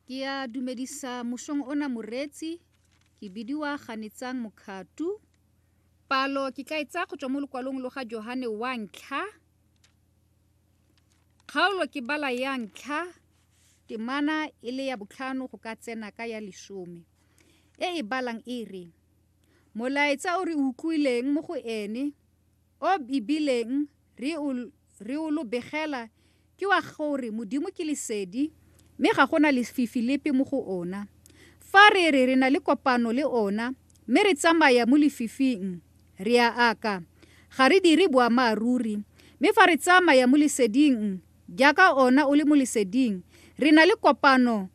Ke a dumedisa mosong ona moreetsi ke bidiwa ganetsang mokgatu palo ke tla e tsaya go tswa mo lokwalong lo ga johane wa ntlha kgaolo ke bala ya ntlha temana e le ya botlhano go ka tsena ka ya lesome e e balang e re molaetsa o re utlwileng mo go ene O e bileng re o, re o lo begela ke wa gore Modimo ke Lesedi, mme ga go na lefifi lepe mo go Ona. Fa re re re na le kopano le Ona, mme re tsamaya mo lefifing, re a aka, ga re dire boamaaruri. Mme fa re tsamaya mo Leseding, jaaka Ona o le mo Leseding, re na le kopano,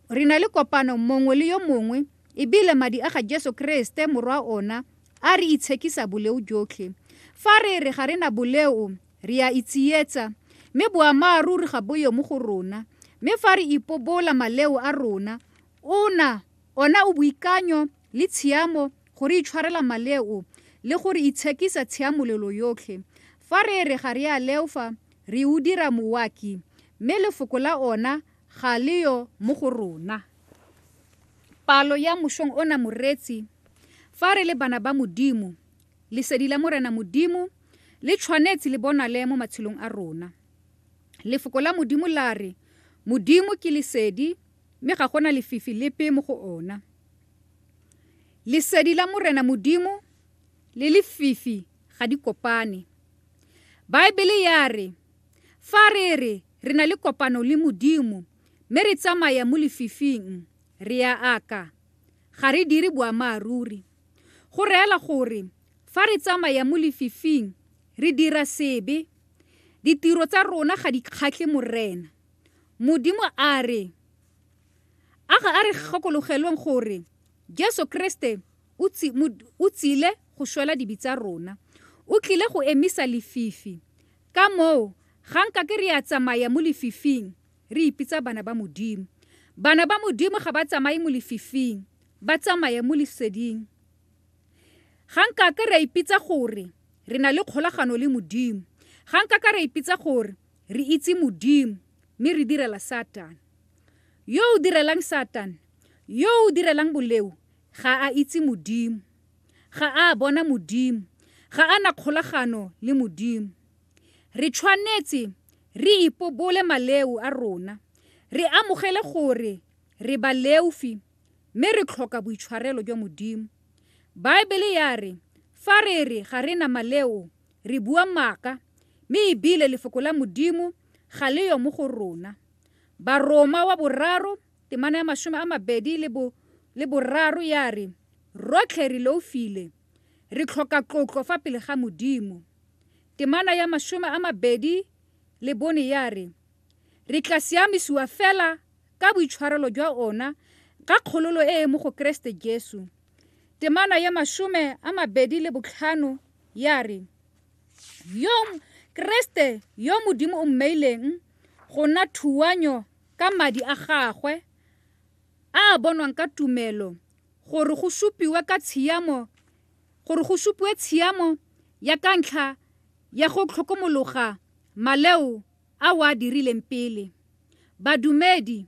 re na le kopano mongwe le yo mongwe, ebile Madi a ga Jesu Keresete, Morwa Ona, A re itshekisa boleo jotlhe. Fa re re ga re na boleo, re a itsietsa, mme boammaaruri ga boyo mo go rona. Mme fa re ipobola maleo a rona, ona, ona o boikanyo le tshiamo go re itshwarela maleo le go re itshekisa tshiamolelo yotlhe. Fa re re ga re a leofa, re o dira mowaki, mme Lefoko la ona ga le yo mo go rona. Palo ya mošong ona moreetsi, fa re le bana ba Modimo, lesedi la Morena Modimo le tshwanetse le bonale mo matshelong a rona. Lefoko la Modimo la re, Modimo ke lesedi, mme ga gona lefifi lepe mo go ona. Lesedi la Morena Modimo le lefifi ga di kopane. Baebele ya re, fa re re re na le kopano le Modimo, Mme re tsamaya mo lefifing, re a aka. Ga re dire boamaaruri. Go reela gore fa re tsamaya mo lefifing, re dira sebe. Ditiro tsa rona ga di kgatlhe Morena. Modimo a re, A ga a re gakologelweng gore Jesu Keresete o, o tsile go shwela dibe tsa rona. O tlile go emisa lefifi. Ka moo, ga nka ke re a tsamaya mo lefifing, re ipitsa bana ba Modimo. Bana ba Modimo ga ba tsamaye mo lefifing, ba tsamaya mo leseding. Ga nka ke re ipitsa gore re na le kgolagano le Modimo, ga nka ka re ipitsa gore re itse Modimo, mme re direla Satane. Yo o direlang Satane, yo o direlang boleo, ga a itse Modimo. Ga a a bona Modimo. Ga a na kgolagano le Modimo. Re tshwanetse re ipobole maleu a rona, re amogele gore re baleufi mme re tlhoka boitshwarelo jwa Modimo. Baebele ya re fa re re ga re na maleo re bua maaka mme e bile Lefoko la Modimo ga le yo mo go rona. Baroma wa boraro Temana ya masome a mabedi le bo le boraro ya re, Rotlhe re loufile, re tlhoka tlotlo fa pele ga Modimo. Temana ya masome a mabedi le bone ya re, Re tla siamisiwa fela ka boitshwarelo jwa ona ka kgololo e e mo go Keresete Jesu. Temana ya masome a mabedi le botlhano ya re, Yo Keresete yo Modimo o mmeileng go nna thuanyo ka madi a gagwe a a bonwang ka tumelo gore go supiwe ka tshiamo gore go supiwe tshiamo ya ka ntlha ya go tlhokomologa maleo a o a dirileng pele. Badumedi